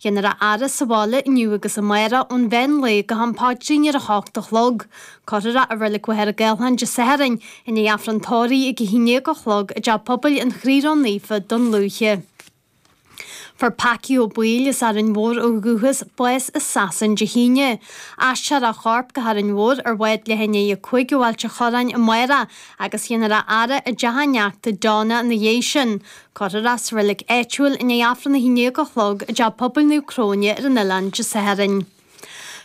Dhéanfar a fhaire sa bhaile inniu agus amárach ón mheán lae go ham paidrín ar a hocht a chlog. Cuirfear i reilig Mhachaire Gathlán Dé Sathairn i ndiaidh Aifreann Tórraimh ag a haon déag a chlog i dTeach Pobail an Chroí Ró Naofa Dún Lúiche. Fuair Packie Ó Baoill as Árainn Mhór ó dhúchas bás i Sasain Dé hAoine. Aistreofar a chorp go hÁrainn Mhór ar bhád leath i ndiaidh a cúig ó Ailt an Chorráin amárach agus dhéanfar a fhaire i dteach a neachta Donna ina dhiaidh sin. Cuirfear sa reilig áitiúil i ndiaidh Aifreann a hAon Déag a Chlog i dTeach Pobail Naomh Cróine ar an oileán Dé Sathairn.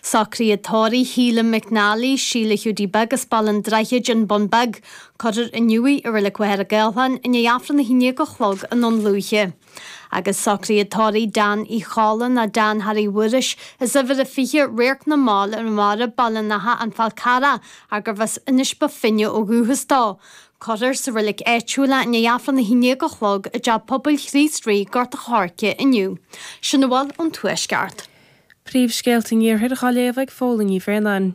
Socruithe tórraimh Shíle McNally, Síle Hiúdaí Beag as Baile an Droichid, An Bun Beag, cuirfear inniu í i reilig Mhachaire Gathlán i ndiaidh Aifreann a hAon Déag a Chlog i nDún Lúiche. Agus socruithe tórraimh Dan Uí Cholla, nó Dan Harry Mhuiris, as uimhir a fiche, Radharc na Mall ar an Bharra, Baile an Átha, An Fál Carrach, ar gurbh as Inis Bó Finne ó dhúchas dó. Cuirfear sa reilig áitiúil i ndiaidh Aifreann a haon déag a chlog i dteach pobail Chríost Rí, Gort a' Choirce inniú. Sin a bhfuil ón Tuaisceart. Príomhscéalta an Iarthair dhá léamh ag Fódhla Ní Bhraonáin.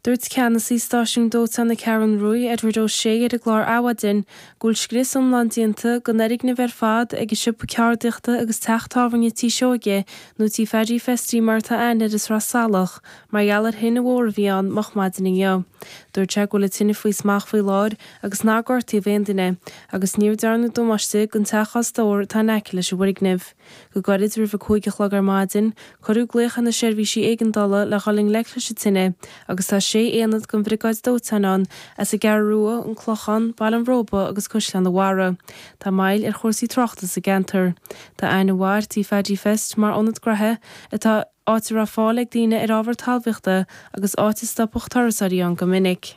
Dúirt ceannasaí stáisiún dóiteáin na Ceathrún Ruaidh, Edward O'Shea ar an gclár Adhmhaidin go bhfuil scrios iomlán déanta, don fhoirgneamh ar fad, ag an siopa ceardaíochta agus teach tábhairne Tí Seoige, nó Tí Phaddy Festy mar atá aithne air i Sraith Salach, Mar gheall ar thine mhór a bhí ann moch maidin inniu. Dúirt sé go bhfuil an tine faoi smacht faoi láthair agus nár gortaíodh aon duine, agus níor dearnadh damáiste don teach stóir atá in aice leis an bhfoirgneamh. Go gairid roimh a cúig a chlog ar maidin, cuireadh glaoch ar na seirbhísí éigeandála le dhul i ngleic leis an tine agus tá sé aonad den bhriogáid dóiteáin ann as an gCeathrú Rua, an Clochán, Baile an Róba agus Caisleán an Bharraigh. Tá moill ar chúrsaí tráchta sa gceantar. Tá aithne mhaith ar Tí Phaidí Fest, mar ionad graithe atá. áit a raibh fáil ag daoine ar ábhar talmhaíochta agus áit a stopadh turasóirí ann go minic.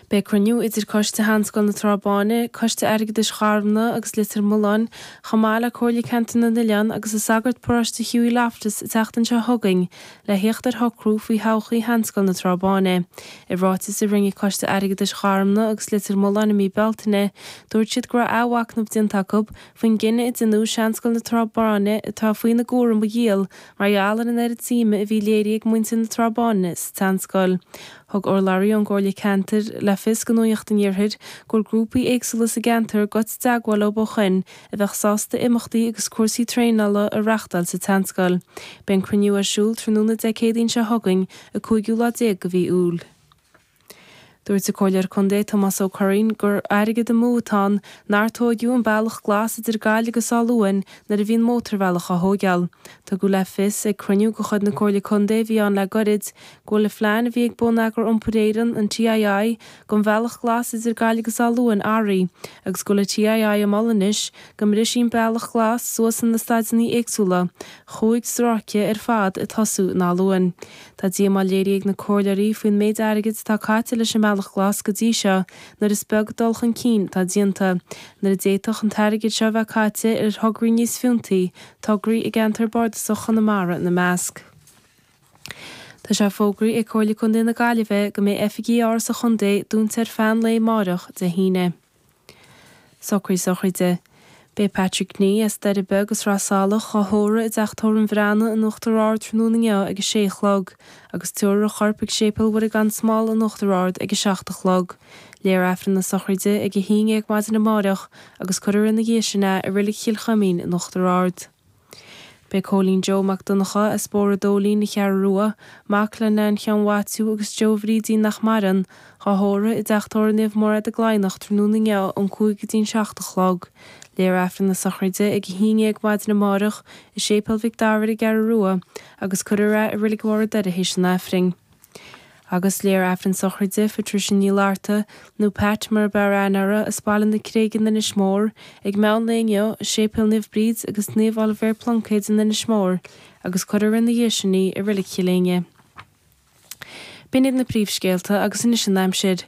Beidh cruinniú idir Coiste Sheanscoil na Trá Báine, Coiste Airgeadais Gharmna agus Leitir Mealláin, chomh maith le Comhairle Ceantar na nOileán agus an sagart paróiste Hughie Loftus an tseachtain seo chugainn le theacht ar shocrú faoi thodhchaí Sheanscoil na Trá Báine. I ráiteas a rinne Coiste Airgeadais Gharmna agus Leitir Mealláin i mí Bealtaine, dúirt siad go raibh athmhachnamh déanta acu faoin gcinneadh a déanadh Seanscoil na Trá Báine atá faoina gcúram a dhíol mar gheall ar an oiread suime a bhí léirithe ag muintir na Trá Báine sa tSeanscoil. Thug urlabhraí ón gComhairle Ceantair le fios do Nuaíocht an Iarthair go bhfuil grúpaí éagsúla sa gceantar goite i dteagmháil leo ó shoin a bheadh sásta imeachtaí agus cúrsaí traenála a reachtáil sa tSeanscoil. Beidh an cruinniú ar siúl tráthnóna Dé Céadaoin seo chugainn, an 5ú lá déag de mhí Iúil. Dúirt an Comhairleoir Contae Tomás Ó Curraoin gur airgead amú atá ann nár tógadh an bealach glas idir Gaillimh agus Áth Luain nuair a bhí an mótarbhealach á thóigeál. Tugadh le fios ag cruinniú de chuid na Comhairle Contae a bhí ann le goirid go bhfuil an plean a bhí ag Bonneagar Iompair Éireann, an TII, don bhealach glas idir Gaillimh agus Áth Luain athraithe agus go bhfuil an TII ag moladh anois go mbrisfí an bealach glas suas ina staideannaí éagsúla chúig stróice ar fad ag tosú in Áth Luain. Tá díomá léirithe ag na comhairleoirí faoin méid airgid atá caite leis an mBealach Glas go dtí seo nuair is beag dul chun cinn atá déanta, nuair a d'fhéadfadh an t-airgead seo a bheith caite ar thograí níos fiúntaí, tograí i gceantar bardasach Chonamara ina measc. Tá sé fógraí ag Comhairle Contae na Gaillimhe go mbeidh oifigí Áras an Chontae dúnta ar feadh an lae amáireach, Dé hAoine. Socruithe sochraide. Beidh Patrick Nee, as Doire Beag i Sraith Salach, dhá thórramh i dTeach Tórraimh an Bhreathnaigh in Uachtar Ard tráthnóna inniu ag a sé a chlog, agus tiúrfar a chorp ag Séipéal Mhuire Gan Smál in Uachtar Ard ag a seacht a chlog. Léifear Aifreann na sochraide ag a haon dhéag maidin amáireach, agus cuirfear ina dhiaidh sin é i Reilig Chill Chuimín in Uachtar Ard. Beidh Cóilín Joe Mac Donncha, as Bóthar an Dóilín, An Cheathrú Rua, mac le Nain Sheáin Mhaitiú agus Joe Bhrídín nach maireann, á thórramh i dTeach Tórraimh Naomh Máiréad i gCladhnach tráthnóna inniu ón cúig go dtí an seacht a chlog. Léifear Aifreann na sochraide ag a haon dhéag maidin amárach i Séipéal Mhic Dara ar an gCeathrú Rua agus cuirfear é i Reilig Bharr an Doire théis an Aifrinn. Agus léifear Aifreann sochraide Phatricia Ní Fhlatharta, nó Pat mar a b'fhearr aithne uirthi, as Baile na Creige in Inis Mór, ag meán lae inniu, i Séipéal Naomh Bríd agus Naomh Oilibhéar Pluncéid in Inis Mór, agus cuirfear ina dhiaidh sin í, i Reilig Chill Éinne. B'in iad na príomhscéalta, agus anois an aimsir.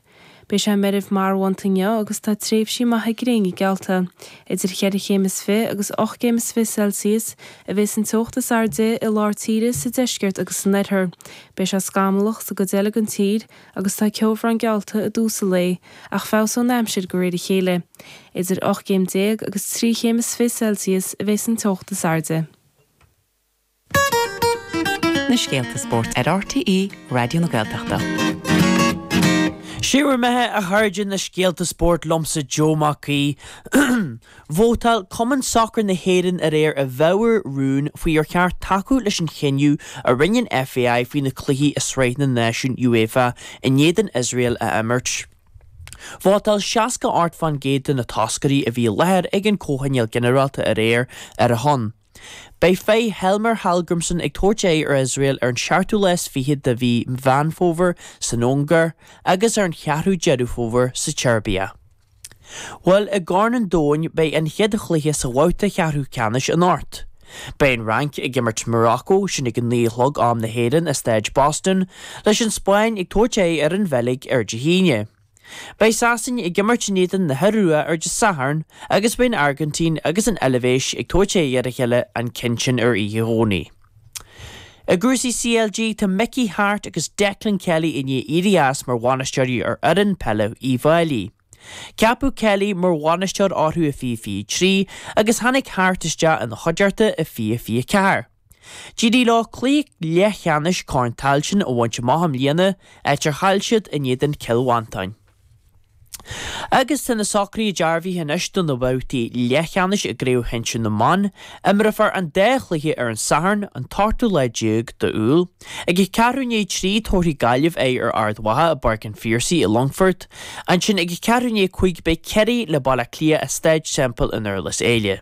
Beidh sé meirbh marbhánta inniu agus tá tréimhsí maithe gréine geallta. Idir cheithre chéim is fiche agus ocht gcéim is fiche Celsius a bheas an teocht is airde i lár tíre, sa deisceart agus san oirthear. Beidh sé scamallach sa gcuid eile den tír agus tá ceobhrán geallta i dtús an lae, ach feabhsóidh an aimsir de réir a chéile. Idir ocht gcéim déag agus trí chéim is fiche Celsius a bheas an teocht is airde. na scéalta spóirt ar RTÉ Raidió na Gaeltachta. Sé bhur mbeatha, a chairde, na scéalta spóirt liomsa Joe Mac Aoidh. Vótáil Cumann Sacair na hÉireann aréir i bhfabhar rún faoi ar cheart tacú leis an chinneadh a rinne an FAI faoi na cluichí i Sraith na Náisiún UEFA in éadan Iosrael a imirt. Vótáil 68 fán gcéad de na toscairí a bhí i láthair ag an gcomhthionól ginearálta aréir ar a shon. Beidh fir Heimir Hallgrímsson ag tabhairt aghaidh ar Iosrael ar an seachtú lá is fiche de mhí Mheán Fómhair san Ungáir agus ar an cheathrú Deireadh Fómhair sa tSeirbia. Bhuel, i gCorn an Domhain beidh an chéad chluiche sa bhabhta cheathrú ceannais anocht. Beidh an Fhrainc ag imirt Morocco sin ag a naoi a chlog am na hÉireann i Staid Boston, leis an Spáinn ag tabhairt aghaidh ar an Bheilg ar Dé hAoine. Beidh Sasain ag imirt in éadan na hIorua ar Dé Sathairn agus beidh an Airgintín agus an Eilvéis ag tabhairt aghaidh ar a chéile an ceann sin ar oíche Dhomhnaigh. I gcúrsaí CLG tá Mickey Harte agus Declan Kelly i ndiaidh éirí as mar bhainisteoirí ar fhoireann peile Uíbh Fhailí. Ceapadh Kelly mar bhainisteoir orthu i fiche fiche trí agus tháinig Harte isteach ina chuideachta i fiche fiche ceathair. D'éirigh leo cluiche leathcheannais Corn Tailteann a bhaint amach i mbliana, áit ar chaill siad in éadan Chill Mhantáin. Agus tá na socruithe dearbhaithe anois do na babhtaí leathcheannais i gCraobh Shinsir na mBan. Imreofar an dá chluiche ar an Satharn, an t-ochtú lá déag d'Iúil. Ag a ceathrú i ndiaidh a trí, tabharfaidh Gaillimh aghaidh ar Ard Mhacha i bPáirc an Phiarsaigh i Longfort. Ansin ag a ceathrú i ndiaidh a cúig beidh Ciarraí le Baile Átha Cliath i Staid Semple i nDurlas Éile.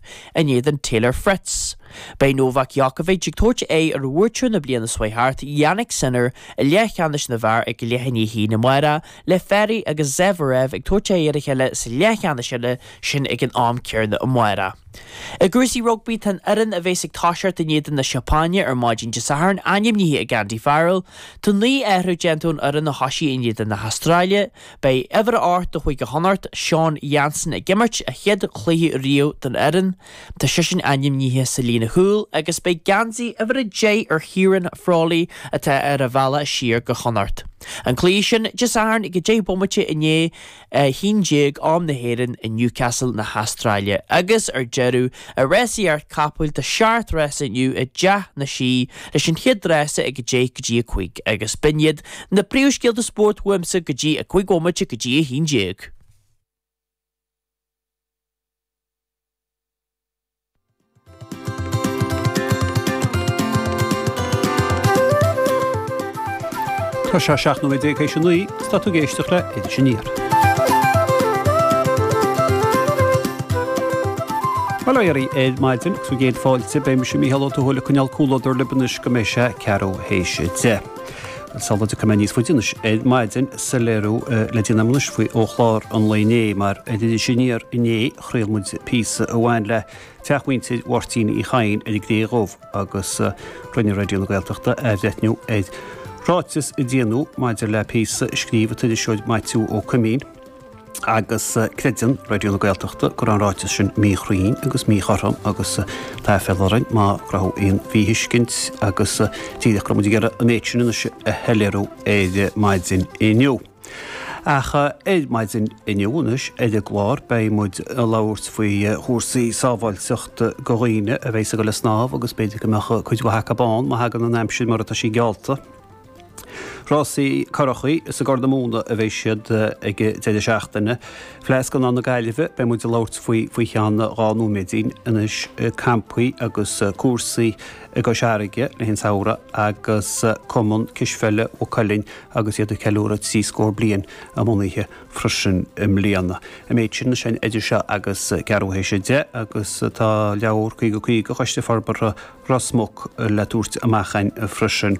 in éadan Taylor Fritz. Beidh Novak Djokovic ag tabhairt aghaidh ar bhuaiteoir na bliana seo thart, Jannik Sinner, i leathcheannais na bhfear ag leath i ndiaidh a haon amárach le Fery agus Zverev ag tabhairt aghaidh ar a chéile sa leathcheannais eile sin ag an am céanna amárach. I gcúrsaí rugbaí, tá an fhoireann a bheas ag toiseacht in éadan na Seapáine ar maidin Dé Sathairn ainmnithe ag Andy Farrell. Tá naoi athrú déanta ón fhoireann a thosaigh in éadan na hAstráile, Beidh uimhir ocht de Chúige Chonnacht, Sean Jansen ag imirt a chéad chluiche riamh don fhoireann, tá seisean ainmnithe sa líne chúil agus beidh geansaí uimhir a deich ar Chiarán Frawley atá ar a bhealach siar go Connacht. An cluiche sin Dé Sathairn ag 10 bomaite i ndiaidh a 11 am na hÉireann i Newcastle na hAstráile. Agus ar deireadh i rásaíocht capall tá seacht rása inniu i dTeach na Sí leis an chéad rása ag 10 go dtí 5 agus b'in iad Na príomhscéalta spóirt uaimse go dtí a cúig bhomaite go dtí a haon déag. Tá sé seacht nóiméad déag théis a naoi, is tá tú ag éisteacht le Iris Aniar. Bail ó Dhia oraibh ar maidin agus bhur gcéad fáilte, beidh mise, Mícheál Ó Tuathail, ag coinneáil comhluadar libh anois go mbeidh sé ceathrú théis a deich. Sula dtiocfaidh muid níos faide anois ar maidin soiléiriú le déanamh anois faoi ó chlár an lae inné, mar ar Iris Aniar inné chraol muid píosa a bhain le teach mhuintir Mháirtín Uí Chadhain ar an gCré Dhubh agus rinne Raidió na Gaeltachta athbhreithniú ar ráiteas a déanadh maidir le píosa a scríobh an t-iriseoir Maitiú Ó Coimín. agus creideann Raidió na Gaeltachta go raibh an ráiteas sin míchruinn agus míchothrom agus tá aiféala orainn má cruthaíodh aon mhíthuiscint agus díreach go raibh muid ag iarraidh an méid sin anois a shoiléiriú ar maidin inniu. Ach ar maidin inniu anois ar an gclár beidh muid ag labhairt faoi chúrsaí sábháilteachta do dhaoine a bheidh ag dul ar snámh agus b'fhéidir go mbeadh cuid mhaith acu ann má thagann an aimsir mar atá sí geallta. Rásaí currachaí is ag Corr na Móna a bheidh siad ag an deireadh seachtaine. Fleadh Scannán na Gaillimhe, beidh muid ag labhairt faoi, faoi cheann dhá nóiméad anois. Campaí agus cúrsaí i gCois Fharraige le haghaidh an tsamhraidh agus Cumann Cispheile Mhaigh Cuilinn agus iad ag ceiliúradh trí scór bliain a mbunaithe freisin i mbliana. An méid sin ar fad idir seo agus ceathrú théis a deich agus tá leabhar 50/50 Choiste Forbartha Ros Muc le tabhairt amach againn freisin.